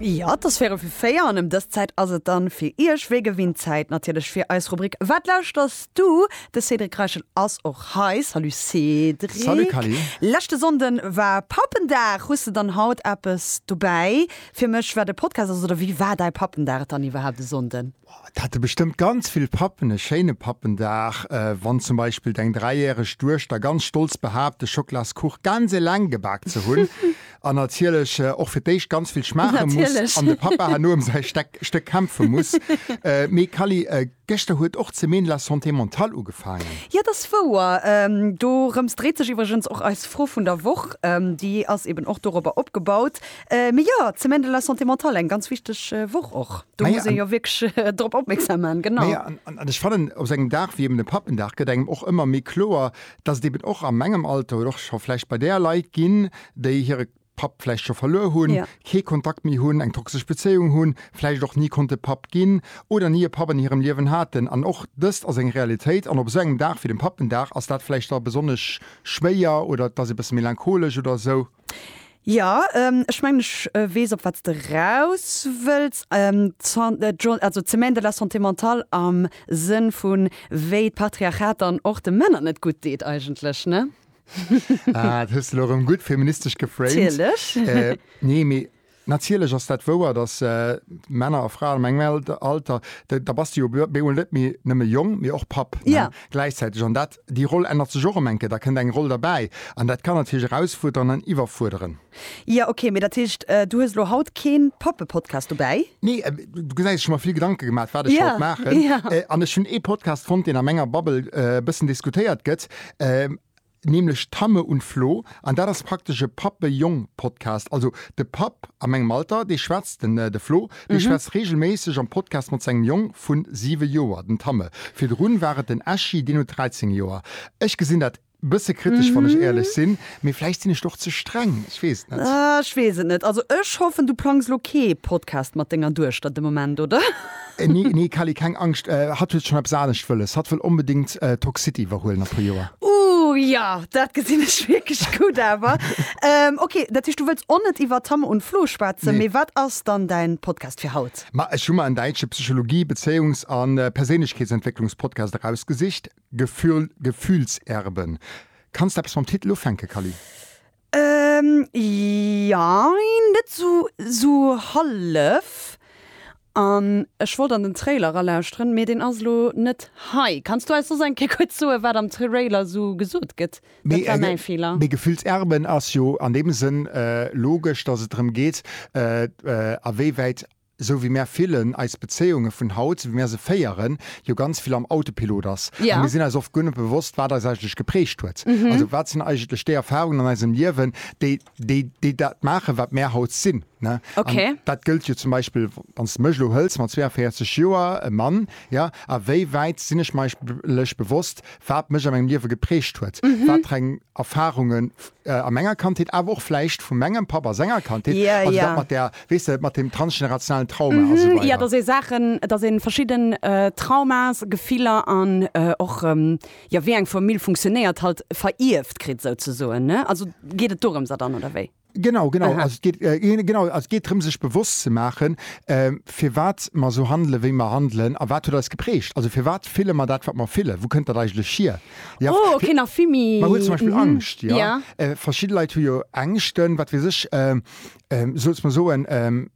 Ja, et ass véierel fir véier an ëm dës Zäit ass et dann fir Iech wéi gewinnt Zäit natierlech fir eis Rubrik Wat lauschters du? De Cédric Reichel ass och hei. Salut Cédric. Salut Kally. Leschte Sonnden war Pappendag. Hues de dann haut eppes dobäi fir mech wat e Podcast ass oder wéi war däi Pappendag dann iwwerhaapt e Sonnden? Et hätte bestëmmt ganz vill Pappen e schéine Pappendag, wann zum Beispill deng dräijäreg Duechter ganz stolz behaapt, de Schoklaskuch ganz eleng gebak ze hunn an natierlech och fir d'éischt ganz vill schmaache muss an de Pappa herno ëm säi Stéck kämpfe muss. Mee Kally, gëschter huet och d'Semaine de la Santé Mentale ugefaangen. Jo, et ass wouer. Dorëms dréit sech iwwregens och eis Fro vun der Woch. Déi ass eeben och dorobber opgebaut. Mee jo, d'Semaine de la santé mentale, eng ganz wichteg Woch och. Do muss ee jo wierklech drop opmierksam maachen, genau. An ech fannen, op esou engem Dag wéi eben dem Pappendag gëtt engem och ëmmer méi kloer, dass et eben och a mengem Alter oder och scho vläicht bei där Leit ginn, déi hire Papp vläicht scho verluer hunn, kee Kontakt méi hunn, eng toxesch Bezéiung hunn, vläicht och ni konnte Papp ginn oder ni e Papp an hirem Liewen haten. An och dëst ass eng Realitéit. An op esou engem Dag wéi dem Pappendag ass dat vläicht da besonnesch schwéier oder et ass ee bësse melancholesch oder esou. Ja, ech mengen, ech weess, op wat s de eraus wëlls. Also d'Semaine de la santé mentale am Sënn vu wéi d'Patriarchat dann och de Männer net gutt deet eigentlech, ne? Ah, dat hues de elo erëm gutt feministesch geframed. Natierlech. Nee, mee Natierlech ass dat wouer, datt Männer a Fraen a mengem Alter, da bass de jo bemol net méi nëmme Jong, mee och Papp gläichzäiteg. An dat, déi Roll ännert sech och ëm enke, da kënnt eng Roll derbäi. An dat kann natierlech erausfuerderen an iwwerfuerderen. Jo, okay, mee dat heescht, du hues elo haut kee Pappe-Podcast dobäi? Nee, du gesäis, ech hu mer vill Gedanke gemaach, wat ech wollt maachen. An ech hunn ee Podcast fonnt, deen a menger Bubble e bëssen diskutéiert gëtt. nämlech Tamme und Flo, an dat ass praktesch e Pappe-Jong-Podcast. Also de Papp a mengem Alter, dee schwätzt, den de Flo, dee schwätzt reegelméisseg am Podcast mat sengem Jong vu 7 Joer, den Tamme. Virdrun war et den Eschi, deen huet 13 Joer. Ech gesinn dat e bësse kritesch, wann ech éierlech sinn, mee vläicht sinn ech do och ze streng, ech weess et net. Ech weess et net. Also ech hoffen, du plangs elo kee Podcast mat denger Duechter de Moment, oder? Nee, nee Kelly, keng Angscht, hatt huet schonn eppes anescht wëlles. Hatt wëll onbedéngt d'Talk City iwwerhuelen a puer Joer. Ooh jo, dat gesinn ech wierklech gutt awer. Ok, dat heescht du wëlls och net iwwer Tam und Flo schwätzen. Mee wat ass dann däin Podcast fir haut? Ma ech hu mer en däitsche Psychologie-, Bezéiungs a Perséinlechkeetsentwécklungs-Podcast erausgesicht, Gefühl, Gefühlserben. Kanns de eppes mam Titel ufänken, Kelly? Ehm jein, net sou sou hallef. An ech wollt an den Trailer era lauschteren, mee deen ass elo net hei. Kanns du eis soss eng Kéier kuerz soen wat am Trailer sou gesot gëtt? Dat war mäi Feeler. Mee gefüllt Erben ass jo an deem Sënn logesch, dass et drëm geet, a wéiwäit esou wéi mär villen, eis Bezéiunge vun haut, esou wéi mär se féieren, jo ganz vill am Autopilot ass. A mir sinn eis oft guer net bewosst, wat eis eigentlech geprägt huet. Also wat sinn eigentlech déi Erfahrungen an eisem Liewen, déi dat maachen, wat mär haut sinn. An dat gëllt jo zum Beispill, wann s de mech elo hëls, mat 42 Joer, e Mann, jo, a wéi wäit sinn ech mer eigentlech bewosst, wat mech a mengem Liewe geprägt huet, wat fir eng Erfahrungen a menger Kandheet, awer och vläicht vu mengem Papp a senger Kandheet, also dat mat där, weess de, mat deem transgenerationalen Trauma a sou weider. Jo, dass ee Saachen, dass ee verschidden Traumas, Gefiller an och, jo, wéi eng Famill funktionéiert, halt verierft kritt souzesoen, ne? Also geet et dorëms a dann, oder wéi? Genau, genau. Aha. Also et geet, genau, also et geet drëm, sech bewosst ze maachen, firwat mer sou handelen, wéi mer handelen a wat huet eis geprägt. Also firwat fille mer dat, wat mer fillen? Wou kënnt dat eigentlech hier? Ja, Oh, okay, nach vill méi. Mer huet zum Beispill Mhm. Angscht, jo. Ja. Äh, verschidde Leit hu jo Ängschten, wat weess ech, ähm, ähm, souz mer soen, ähm,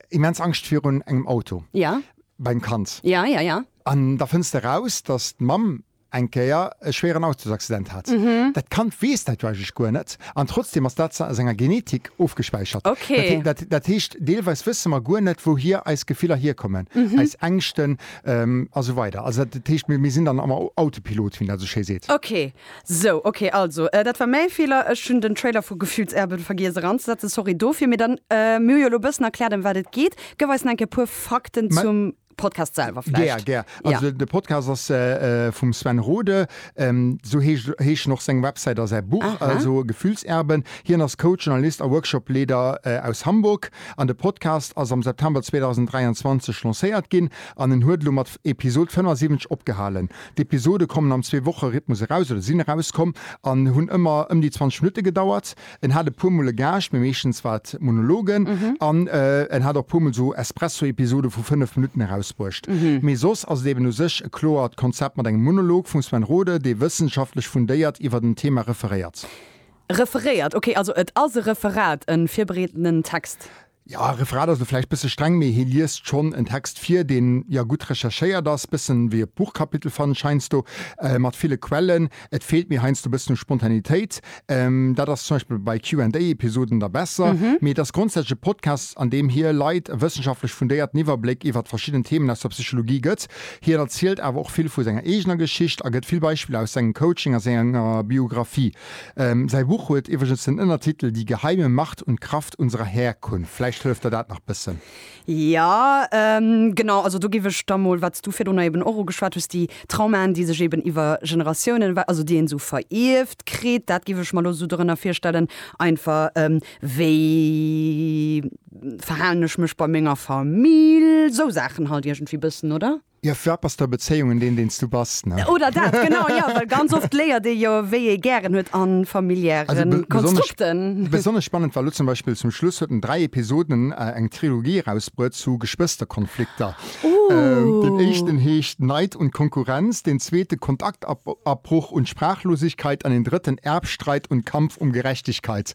immens Angscht virun engem Auto Ja, beim Kand. ja, ja, ja. An da fënns de raus, dass d'Mamm eng Kéier e schwéieren Autosaccident hat. Mhm. Dat Kand weess dat jo eigentlech guer net, an trotzdem ass dat a senger Genetik ofgespäichert. Okay. Dat, dat, dat heescht, deelweis wësse mer guer net, wouhier eis Gefiller hierkommen, Mhm. eis Ängschten, A sou weider. Also dat, dat heescht, mir, mir sinn dann am Autopilot, wéi een dat esou schéi seet. Ok, sou, ok, also dat war mäi Feeler. Ech hunn den Trailer vu Gefühls'Erben vergiess eranzesetzen. Sorry dofir. Mee dann, mir hu jo elo e bëssen erkläert, ëm wat et geet. Gëff eis nach eng Kéier e puer Fakten zum Podcast selwer vläicht. Gär, gär. Also de Podcast ass vum Sven Rode. Sou heescht, heeschen och seng Websäit a säi Buch, also Gefühls'Erben. Hien ass Coach, Journalist a Workshopleeder aus Hamburg. An de Podcast ass am September 2023 lancéiert ginn an en huet elo mat Episod 75 opgehalen. D'Episode kommen am Zwee-Woche-Rhythmus eraus oder sinn erauskomm an hunn ëmmer ëm déi 20 Minutte gedauert. En hat e puer Mol e Gaascht, mee meeschtens war et Monologen an en hat och e puer Mol esou Espresso-Episode vu 5 Minutten erausbruecht. Mee soss ass et eben u sech e kloert Konzept mat engem Monolog vum Sven Rode, dee wëssenschaftlech fundéiert iwwert en Thema referéiert. Referéiert, ok, also et ass e Referat, en virbereedtenen Text. Jo, Referat ass lo vläicht bësse streng, mee hie liest schonn en Text vir, deen jo gutt recherchéiert ass, bëssen wéi e Buchkapitel fannen ech heiansdo, mat ville Quellen. Et feelt mir heiansdo bëssen u Spontanitéit. Dat ass zum Beispill bei Q and A Episoden da besser, mee et ass grondsätzlech e Podcast, an deem hie Leit e wëssenschaftlech fundéierten Iwwerbléck iwwert verschidden Themen aus der Psychologie gëtt. Hien erzielt awer och vill vu senger eegener Geschicht a gëtt vill Beispiller aus sengem Coaching a senger Biographie. Säi Buch huet iwwregens den Ënnertitel Die geheime Macht und Kraft unserer Herkunft. Vläicht hëlleft der dat nach bëssen. Jo, genau. Also do géif ech da mol, wat s du virdrunner eben och ugeschwat hues, déi Traumaen, déi sech eben iwwer Generatiounen, also déi een esou verierft kritt, dat géif ech mer elo esou dorënner virstellen, einfach wéi verhalen ech mech bei menger Famill, esou Saachen halt iergendwéi bëssen, oder? Jo, fir wat bass du a Bezéiungen, deen deen s du bass, ne? Oder dat, genau, jo, well ganz oft léiert ee jo, wéi ee gären huet a familiäre Konstrukten. Besonnesch spannend war elo zum Beispill, zum Schluss huet en dräi Episoden, eng Trilogie erausbruet zu Geschwësterkonflikter. Deen éischten heescht Neid und Konkurrenz, deen zweete Kontaktabbruch und Sprachlosigkeit an deen drëtten Erbstreit und Kampf um Gerechtigkeit.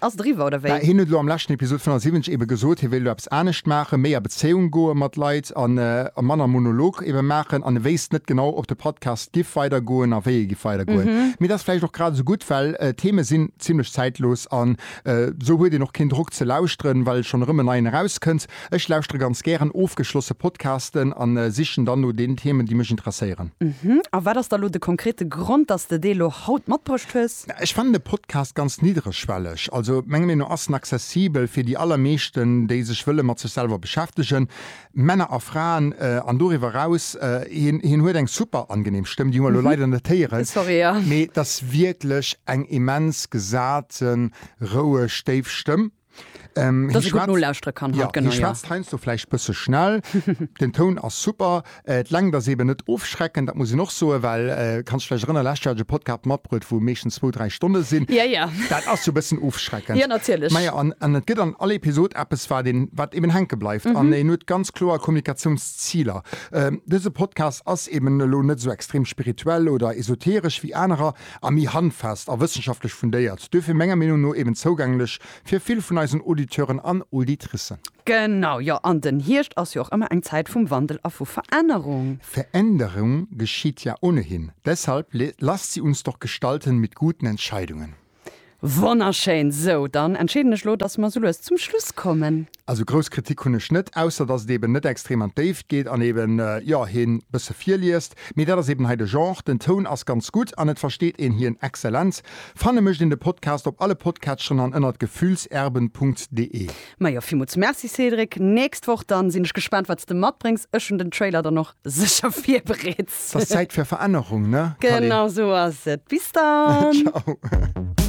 Ass driwwer oder wéi? Hien huet elo am leschten Episod 75 ebe gesot, hie wéilt elo eppes anescht maachen, méi a Bezéiung goe mat Leit a manner Monolog ebe maachen. An e wéisst net genau, ob de Podcast giff weider goen a wéi e giff weider goen. Mee et ass vläicht och grad esou gutt, well d'Theme sinn zimlech zäitlos an esou huet een och keen Drock ze lauschteren, well schonn erëm en neien erauskënnt. Ech lauschtere ganz gären ofgeschlosse Podcasten an sichen dann no den Themen, déi mech interesséieren. A wat ass da elo de konkrete Grond, dass de dee elo haut matbruecht hues? Ech fannen de Podcast ganz niddregschwelleg. Also menger Meenung no ass en accessibel fir déi allermeeschten, déi sech wëlle mat sech selwer beschäftegen, Männer a Fraen an doriwwer eraus. Hien hien huet eng super angenehm Stëmm, déi hu mer elo leider net héieren, mee et ass wierklech eng immens gesate, roueg, déif Stëmm. Ähm, dass ich no lausre kann ja, genau, ja. Heinz so vielleicht bisschen schnell den Ton aus super äh, lang das eben nicht ofschrecken da muss ich noch so weil äh, kannst vielleicht drin lastchte Podcast matbrüt wo Mädchen zwei drei Stunden sind ja ja das auch so bisschen ofschrecken ja natürlich Maja, an, an das geht an alle Episode ab es war den was eben hängen bleibt mhm. an äh, nur ganz klar Kommunikationsziele ähm, diese Podcast ist eben nicht so extrem spirituell oder esoterisch wie andere a méi handfest a wëssenschaftlech fundéiert, duerfir menger Meenung no eben zougänglech fir vill vun eisen Auditeuren an Auditricen. Genau, jo, an den Hierscht ass jo och ëmmer eng Zäit vum Wandel a vu Verännerung. Veränderung geschitt ja ohnehin, deshalb lasst sie uns doch gestalten mit guten Entscheidungen. Wonnerschéin! Sou, dann entscheeden ech elo, dass mer sou lues zum Schluss kommen. Also grouss Kritik hunn ech net, ausser dass et eben net extrem an d'Déift geet an eben, jo, hien bësse virliest. Mee dat ass eben hei de Genre. Den Toun ass ganz gutt an et versteet een hien exzellent. Fanne mécht een de Podcast op alle Podcatcheren an ënnert gefühlserben.de. Majo, villmools Merci Cédric. Nächst Woch dann sinn ech gespaant, wat s de matbréngs. Ech hunn den Trailer dann och sécher virbereet. 't ass Zäit fir Verännerung, ne Kalle? Genau sou ass et. Bis dann! Ciao!